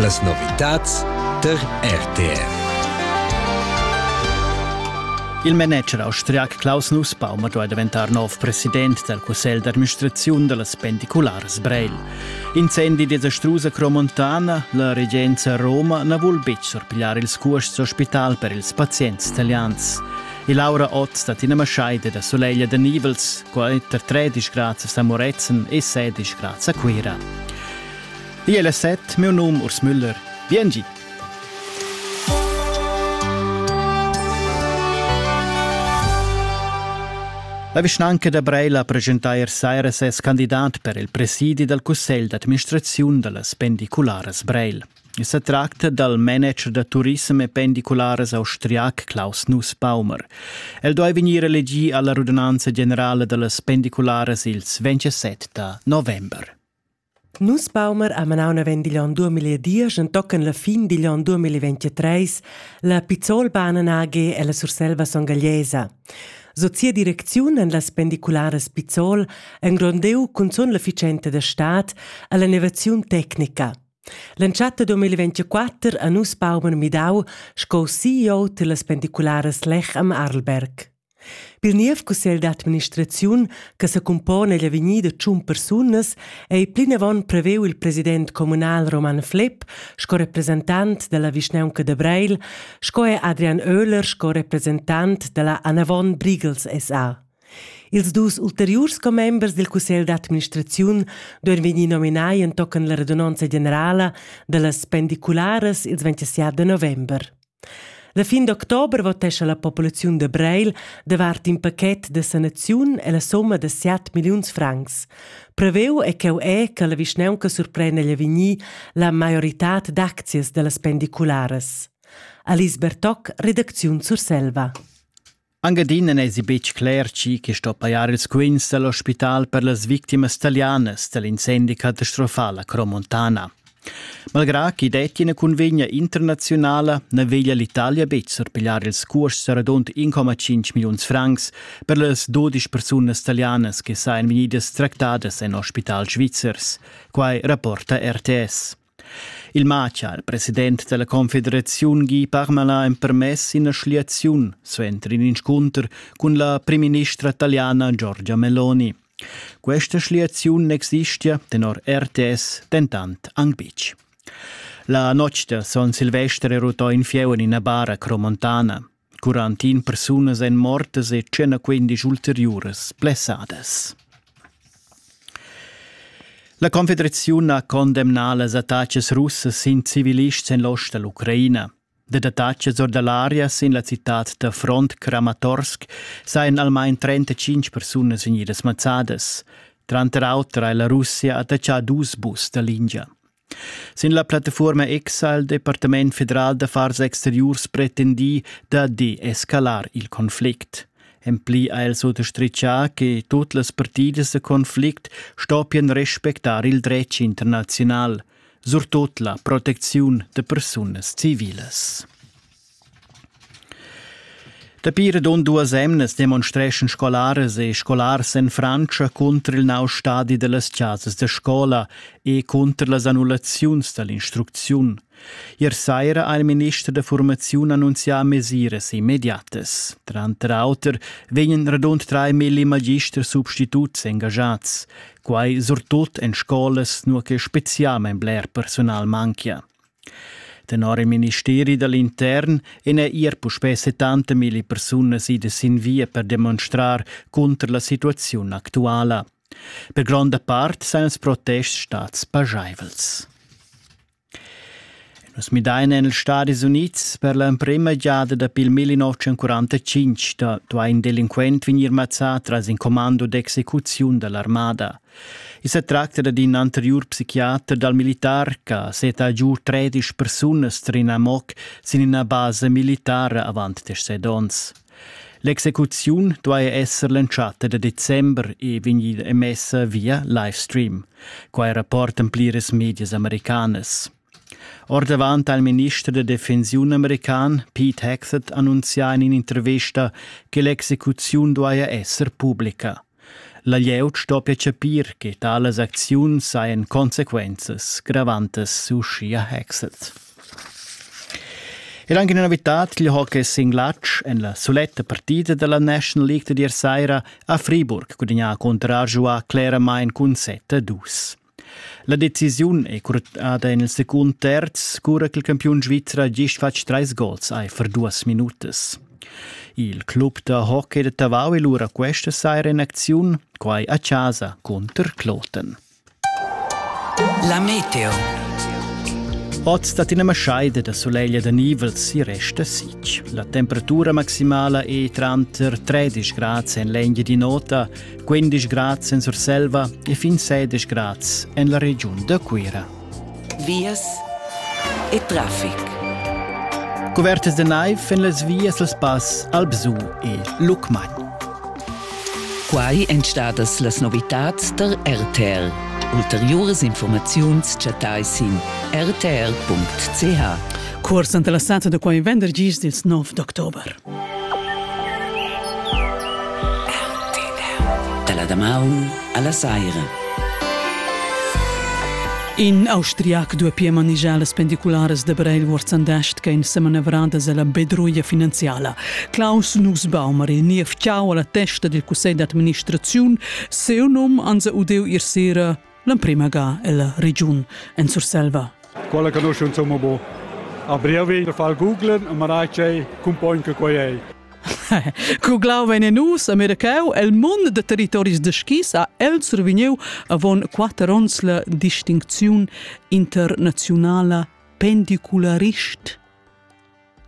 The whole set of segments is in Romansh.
Las novitads tar RTR. Il manager austriac Klaus Nussbaum duai daventar nov president dal cussegl d'administraziun da las pendicularas Breil. Incendi desastrus a Cromontana, la regenza Roma na vul betg surpigliar ils cuosts d'ospital per ils pazients italians. E Laura Ott da Tina Maschai è da Soleglia da Nivels quai per tredisch grads a Moretzen e sedisch grads a Cuira. Igl è set, meu num Urs Müller. Vien gi! La vischnanca da Breila presenta ier saira ses candidat per il presidi dal cussegl d'administraziun da las pendicularas Breil. I sa tracta dal manager da turissem e pendicularas austriac Klaus Nussbaumer. El duai vegnir elegì a la rudunanza generala da las pendicularas ils 27 da november. Nussbaumer ha manau naven digl onn 2010 entochen la fin digl onn 2023 la Pizzolbahnen AG e la Surselva Songagliesa. Sot sia direcziun en las pendicularas Pizzol engrondeu cunzun l'efficienza da stad alla innovaziun tecnica. L'entschatta 2024 ha nus paumer midau sco CEO tillas pendicularas Lech am Arlberg. Pil niev cussegl d'administraziun che secumpona egl avegnir da tschun persunas ei plinavon preveu il president communal Roman Flepp sco representant dalla vischnaunca da Breil, sco er Adrian Oehler sco representant dalla Anavon Briegels SA. Ils dus ulteriurs commembers dil cussegl d'administraziun duein vegnir nominai entochen la radunonza generala dallas pendicularas ils 27 da november. La fin d'october votescha la populaziun de Breil davart in paquet de sanaziun e la somma de 7 milliuns francs. Preveu è cheu è che la vischnaunca surprenda gli vegnir la maioritad d'aczias dallas pendicularas. Alice Bertoc, redacziun Surselva. Anche adina non è betg cler chi che sto pajar ils quints dell'ospital per las victimas italianas dell'incendi catastrofal a Cromontana. Malgrà chi detti una convegna internazionale, ne veglia l'Italia betg sorpigliar ils cuosts radund 1,5 millions francs per las 12 persunas italianas che sajan vegnidas tractadas in ospital svizzers. Quai rapporta RTS. Il Macha, il president dalla confederaziun Guy Parmelin, ha empermess ina schliaziun suenter in inscunter cun la primministra italiana Giorgia Meloni. Questa schliaziun existia tenor RTS dentant anc betg. La notg da Son Silvester è rutò in fieu en ina bara cromontana. Quarantin persunas èn mortas e quindesch ulteriuras blessadas. La Confederaziun ha condemnà las attacas russas sin civilists en l'ost da l'Ucraina. Dad attacas or da l'aria sin la citad da front Kramatorsk sajan almain 35 persunas vegnidas mazzadas. Tranter auter ha la Russia attaccà dus bus da lingia. Sin la plattafuorma X ha il Departament federal d'affars exteriurs pretendì da deescalar il Konflikt. En pli ha el sottostritgà che tut las partidas da Konflikt stoppian respectar il dretg internaziunal, surtut la protecziun da persunas civilas. Dapi radund duas emnas demonstreschan scolaras e scolars en Frantscha cunter il nov stadi dallas chasas da scola e cunter las annullaziuns dall'instrucziun. Ier saira ha il minister da formaziun annunzià mesiras immediatas. Tranter auter vegnan radund trai milli magisters substituts engaschats, quai surtut en scolas nua che spezialmain bler personal manchia. Tenor il ministeri da l'intern en è er puspè 70.000 persunas idas sin via per demonstrar cunter la situaziun actuala. Per gronda part sain els protests stads pajaivels. Nus midain en ils Stadis Unids per l'emprima giada dapi il 1945 da duai in delinquent vegnir mazzà tras in commando d'execuziun da l'armada. I sa tracta da in anteriur psichiater dal militar che seta giu tredisch persunas tar in amoc sin ina basa militara avant set onns. L'execuziun duai esser l'entschatta da december e vegnir emessa via livestream. Quai rapportan pliras medias americanas. Ordavant ha il minister da defensiun american Pete Hegseth annunzià en in'intervista che l'execuziun duaja esser publica. La glieud stoppia chapir che talas acziuns hajan consequenzas gravantas, uschia Hegseth. E anche una novità, il hockey sin glatsch en la soletta partita della National League di ieri sera a Friburg gudagnà contro Arjoa claramente cun 7-2. La decisiun è curtada en il secund terz, cura ch'il campiun svizzer ha gist fatg trais gols aifer duas minutas. Il club da hockey da Tavau è lura questa saira en acziun, quai a casa cunter Kloten. La Meteo. Oz dat ina maschaida da sulegl da nivels e resta sitg. La temperatura maximala è tranter 13 grad en l'engia di nota 15 grads en Surselva e fin 16 grads en la regiun da Cuira. Vias e traffic. Cuvertas de naiv en las vias dal spass Albsu e Lucmagn. Quai èn stadas las novitads tar RTL. Ulteriuras informaziuns chattai sin rtl.ch. Cuors interessata da quai vendergis dils 9 d'october. Dalla damaun alla saira. In austriac dua pia manegiar las pendicularas da Breil Wurzandast che in semanevrades alla bedruia finanziala. Klaus Nussbaumer e niev ciao alla testa del cussegl d'administraziun, seu num anza udeu ir sera L'emprima ga ella regiun en Surselva. Quella conosciunza mo bo. A brevi da far Google e marai che cumpogn che quei ei. Cuglau vegn nus a mercau el mund de territoris de skis a el survigniu avon quater ons la distincziun internazionala pendicularist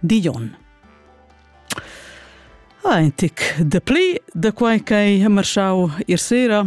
Dion. Ein tic de pli de quei ch'ei marschau ir sera